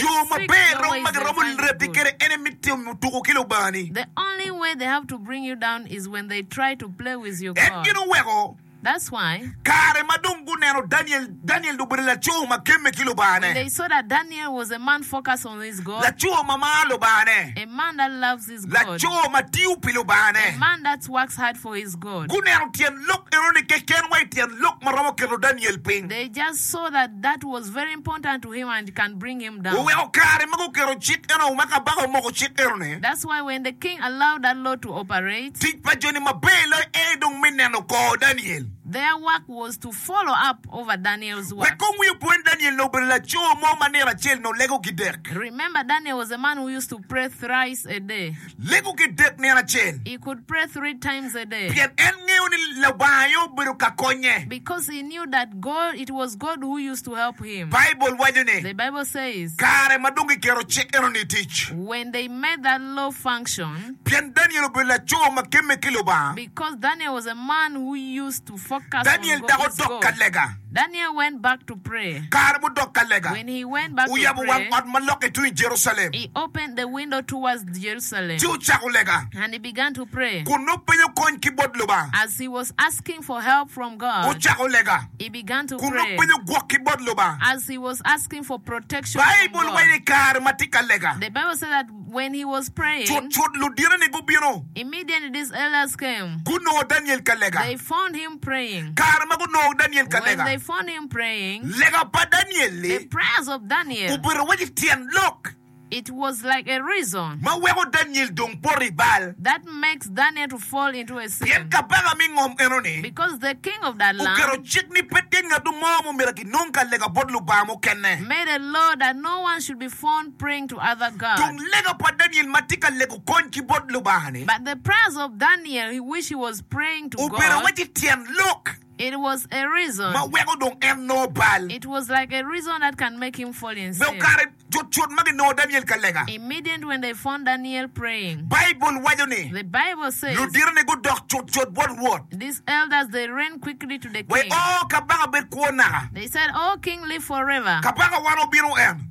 Yo maber romo ma giromo lebbi kwede en aye me timo tuko ki Lubangani. En gin oweko kare ma dong guneno Daniel, Daniel dong obedo laco ma gemme ki Lubangane, laco ma maro Lubangane. laco ma tiyo pi Lubangane. Guneno tyen lok enoni keken wa i tyen lok ma romo keto Daniel piny. Oweko kare ma guketo cik eno ma kabaka omoko cik enoni, tic pa joni maber loyo aye dong me neno kor Daniel. Wek kong wi opwony Daniel ni obedo laco mo ma nino acel-ni olego ki dek. Lego ki dek nino acel pien en ngeyo ni Lubanga aye obedo ka konye. Baibul waco ni, Kare ma dong giketo cik enoni i tic, pien Daniel obedo laco ma gemme ki Lubanga, Daniel dok odok ka lega. Kare mudok ka lega, oyabo wang ot ma lokke tung i Jerucalem, ci ocako lega kun nongo penyo kony ki bot Lubanga. Ocako lega kun nongo penyo gwok ki bot Lubanga. Baibul waco ni kare ma tye ka lega, Cutcut luditeni gubino, gunongo Daniel ka lega. Kare ma gunongo Daniel ka lega, lega pa Daniel-li obedo iwaci tyen lok ma weko Daniel dong poto i bal. Pien kabaka me ngom enoni oketo cik ni pe tye ngatu mo ma omyero kinong ka lega bot lubanga mukene. Tung lega pa Daniel ma tye ka lego kony ki bot Lubanga-ni obedo wacci tyen lok ma weko dong en nongo bal. Be okato cutcut ma ginongo Daniel ka lega? Baibul waco ni, Luditone gudok cutcut bot Rwot, wa i oo, kabaka bed kwo naka! Kabaka wan obino en.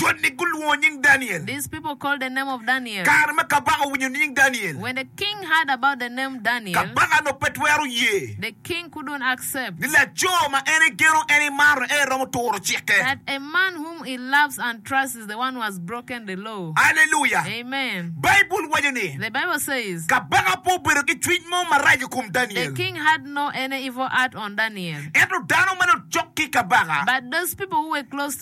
Joni gulwongo nying Daniel. These people called the name of Daniel. Kare ma kabaka owinyo nying Daniel. When the king heard about the name Daniel. Kabaka dong pe twero ye. The king couldn't accept. Ni laco ma en igeno, en imaro, en iromo turo cikke. That a man whom he loves and trusts is the one who has broken the law. Alleluia! Amen! Baibul waco ni. The Bible says. Kabaka pe obedo ki cwiny mo marac i kom Daniel. The king had no any evil heart on Daniel. Ento dano ma nocok ki kabaka. But those people who were close.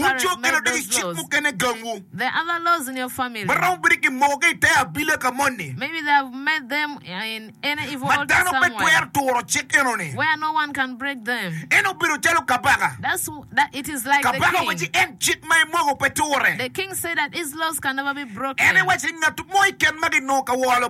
Wucok ki ludegi cik mukene gangwu ma romo bedo kimokogi i te abila ka moni ma dano pe twero turo cik enoni. En obedo calo kabaka. Kabaka owaci en cik ma emoko pe ture. En ewaci ni ngat mo i ken magi nongo ka woro Lubanga.